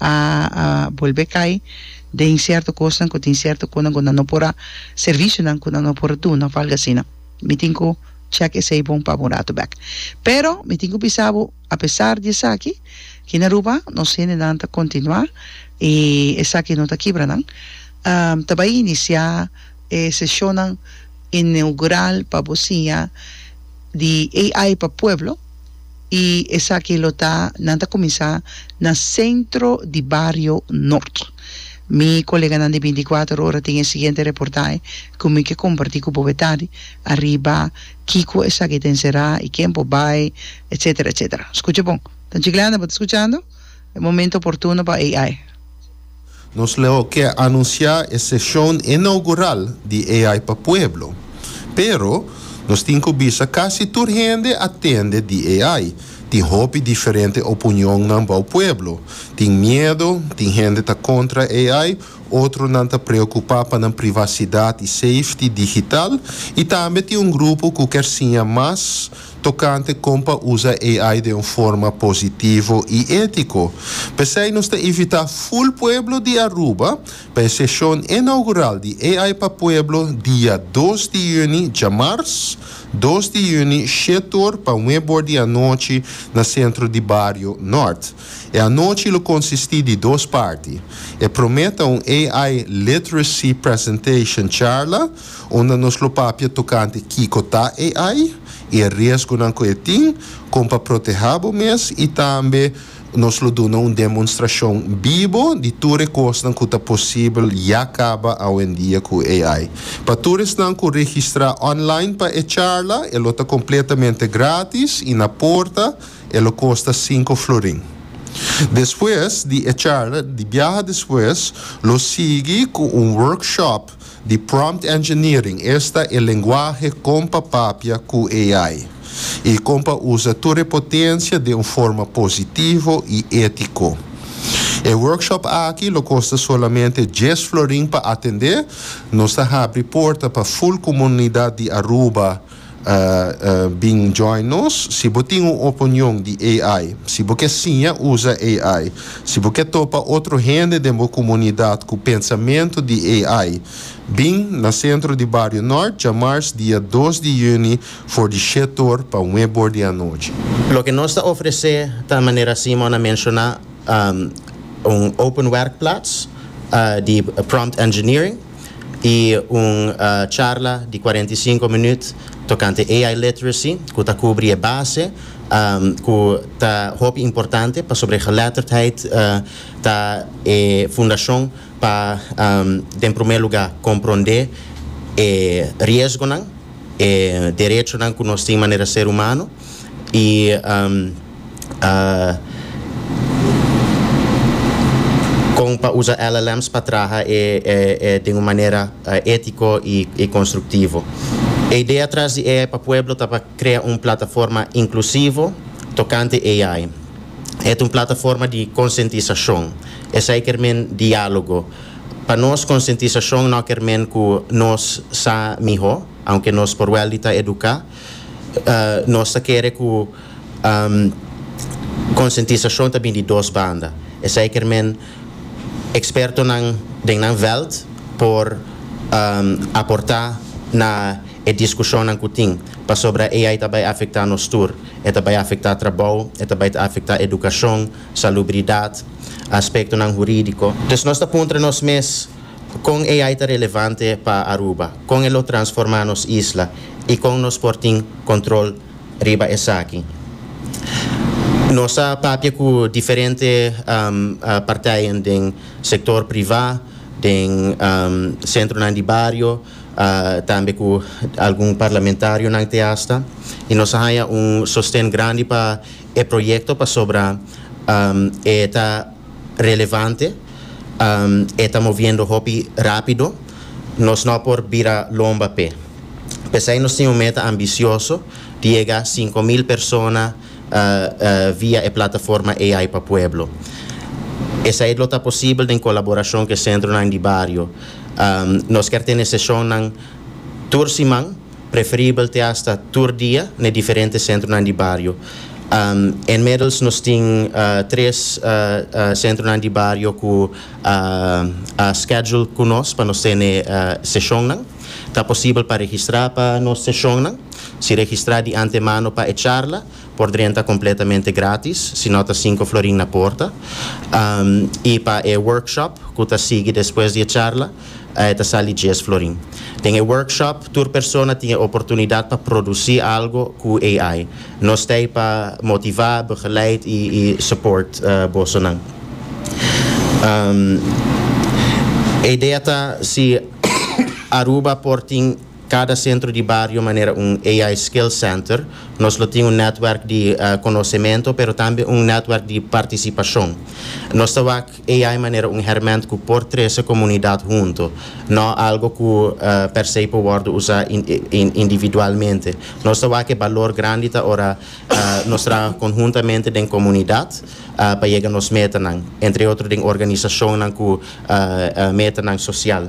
a bolbe cay den cierto cosnan cu tin cierto cunan cu nan no por a servicionan cu nan no por duna of algo asina mi tin cu check esey bon pabo un rato bek pero mi tin cu bisabo apesar di esaki aki na Aruba nos hendenan ta continua y esaki no ta kibra nan ta bay inicia e sesionnan inaugural pa bo siña di AI pa pueblo y esaki lo ta nan ta cuminsa na centro di bario Noord. Mi coleganan di binticuater ora tin e siguiente reportahe cu mi ke comparti cu boe tardi ariba kico esaki ta encera y ken por bay etcetera etcetera. Scucha bon. Ta chiclana bo ta scuchando? E momento oportuno pa AI. Nos lo ke anunsiá e seshon inaugural di AI pa pueblo. Pero, nos tin ku bisa kasi tur hende a tende di AI. Tin hopi diferente opunionnan bou pueblo. Tin miedo, tin hende ta kontra AI, otronan ta preokupá pa nan privasidat i safety digital i tambe tin un grupo ku ker siña mas tokante kon pa usa AI den un forma positivo i étiko. P'esei nos ta invitá ful pueblo di Aruba pa e seshon inaugural di AI pa pueblo dia dos di yüni, djamars dos di yüni, shete or pa nuebe or di anochi na Sentro di Bario Nòrt. E anochi lo konsistí di dos parti. E promé ta un AI Literacy Presentation, charla, unda nos lo papia tokante kiko ta AI i e riesgonan ku e tin, kon pa protehá bo mes i tambe nos lo duna un demonstrashon bibo di tur e kosnan ku ta posibel ya kaba awendia ku AI. Pa tur esnan ku registrá online pa e charla e lo ta kompletamente grátis i na porta e lo kosta sinku florin. Despues di e charla di biaha despues lo sigui ku un workshop. di Prompt Engineering, esta e lenguahe kon pa papia ku AI i kon pa usa tur e potensia den un forma positivo i étiko. E workshop aki lo kosta solamente dies florin pa atendé, nos ta habri porta pa ful komunidat di Aruba, Bin join nos si bo tin un oponion di AI, si bo ke siña usa AI, si bo ke topa otro hende den bo komunidat ku pensamentu di AI. Bin na Sentro di Bario Nort djamars dia dos di yüni for di shét or pa nué bor di anochi. Loke nos ta ofresé ta manera Simon a menshoná un open werkplats di prompt engineering. y un charla di cuarenta y cinco minuut tocante AI literacy cu ta cubri e base cu ta hopi importante pasobra e geletterdheid ta e fundacion pa den primer lugar compronde e riesgonan, e derechonan cu nos tin manera ser humano y a kon pa usa LLMs pa traha e e den un manera etiko i konstruktivo. E idea tras di AI pa Pueblo ta pa krea un plataforma inklusivo tokante AI. E ta un plataforma di konsientisashon, esei ker men diálogo. Pa nos konsientisashon no ker men ku nos sa mihó, aunke nos por wel di ta eduká. Nos ta kere ku konsientisashon ta bin di dos banda. Esei kermen ekspertonan den nan vèlt por aportá na e diskushonnan ku tin, pasobra AI ta bai afektá nos tur. E ta bai afektá trabou, e ta bai ta afektá edukashon, salubridat, aspektonan hurídiko. Entonces nos ta puntra nos mes, Kon AI ta relevante pa Aruba? Kon e lo transformá nos isla i kon nos por tin kontrol riba esaki? Nos a papia ku diferente parteien den sektor privá, den sentronan di bario, tambe ku algun parlamentarionan te asta i nos a haña un sosten grandi pa e proyekto pasobra e ta relevante. E ta moviendo hopi rápido. Nos no por bira lomba p'e. P'esei nos tin un meta ambisioso di yega sinku mil persona via e plataforma AI pa Pueblo. Esei lo ta posibel den kolaborashon ku e sentronan di bario. Nos ker tene seshonnan tur siman. Preferibel te hasta tur dia na e diferente sentronan di bario. Inmiddels nos tin tres sentronan di bario cu a schedule cu nos pa nos tene sesionnan. Ta posibel pa registra pa nos sesionnan. Si registra di antemano pa e charla. Por dren ta completamente gratis, si no ta cinco florin na porta. Y pa e workshop cu ta sigui despues di e charla e ta sali dies florin. Den e workshop tur persona tin e oportunidad pa produci algo cu AI. Nos ta ey pa motiva, begeleid y y support bosonan. E idea ta si Aruba por tin. Cada centro di bario manera un AI Skill Center, nos lo tin un netwerk di conocemento pero tambe un netwerk di participacion. Nos ta wak AI manera un herment cu por trece comunidad hunto, no algo cu per se por wordo usa individualmente. Nos ta wak e balor grandi ta ora nos traha conhuntamente den comunidad pa yega nos metanan, entre otro den organisacionnan cu metanan social.